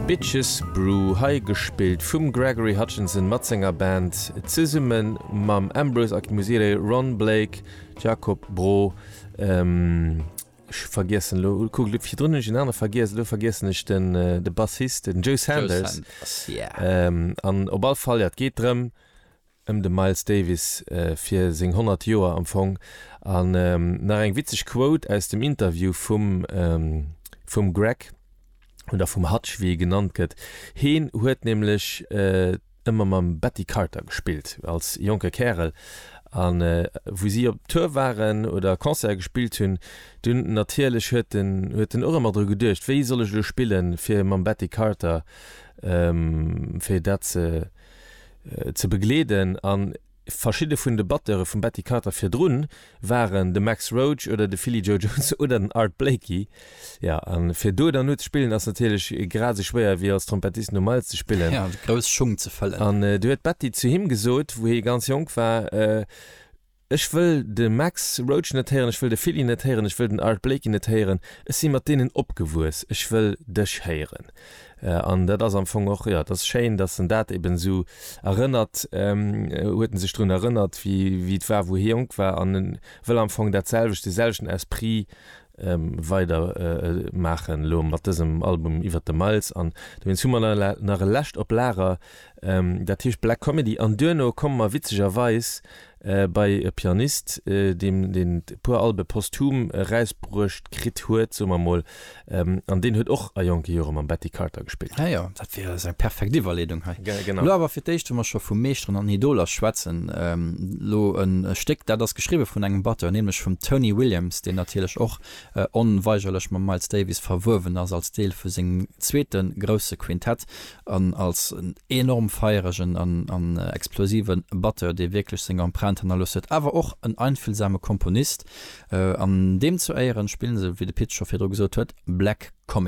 Bitches Brew, hei gespillt vum Gregory Hutchinson mat senger Band, zesumme mam Ambrose Akinmusire, Ron Blake, Jacob Brault, ech vergiessen elo, kuckt elo, virdrun hunn ech een anere vergiess, elo vergiessen ech den, de Bassist, den Joe Sanders, an op all Fall, jo, et geet drëm, ëm de Miles Davis fir seng 100 Joer am Fong an nach eng witzeg Quote aus dem Interview vum vum Greg oder vum Hutch wéi e genannt gëtt. Heen huet nämlech ëmmer mam Betty Carter gespillt als jonke Kärel an wou si op Tour waren oder Concerte gespillt hunn dunn natierlech huet den huet den och ëmmer dru geduecht wéi soll ech elo spillen fir mam Betty Carter fir dat ze ze begleeden an verschidde vun de Batteure vum Betty Carter virdrun waren de Max Roach oder de Philly Joe Jones oder den Art Blakey. Jo, a fir do dann no ze spillen ass natierlech grad esou schwéier wéi als Trompettist no Miles ze spillen. Jo, grouss Schung ze fëllen. An du huet d'Betty zu him gesot, wou hie ganz jonk war, Ech wëll de Max Roach net héieren, ech wëll de Philly net héieren, ech wëll den Art Blakey net héieren. Ech si mat deenen opgewuess, ech wëll dech héieren. An dat ass am Fong och, jo, et ass schéin, datt en dat eben esou erënnert, huet en sech drun erënnert, wéi et war, wou hie jonk war, an e wëll am Fong datselwecht, deeselwechten Esprit weider maachen elo mat dësem Album iwwert de Miles an dowéinst hu mer nach e lescht op Lager, dat heescht Black Comedy an duerno komme mer witzegerweis bei e Pianist, deem deen e puer Albe posthum erausbruecht kritt huet, soe mer emol, an deen huet och a jonke Jore mam Betty Carter gespillt. Ah jo. Fir ass eng perfekt Iwwerleedung hei. Ge genau. Lo awer fir d'éischt, wa mer scho vu Meeschteren an Idoler schwätzen, ähm, lo e Stéck, dat ass geschriwwe vun engem Batteur, nämlech vum Tony Williams, deen natierlech och onweigerlech mam Miles Davis verwuewen ass als Deel vu sengem zweete grousse Quintett an als enorm feieregen an, an explosive Batteur, dee wierklech seng Empreinte hannerlooss huet, awer och en einfühlsame Komponist. An deem zu Éieren spillen se, wéi de Pit scho virdru gesot huet, Black Comedy.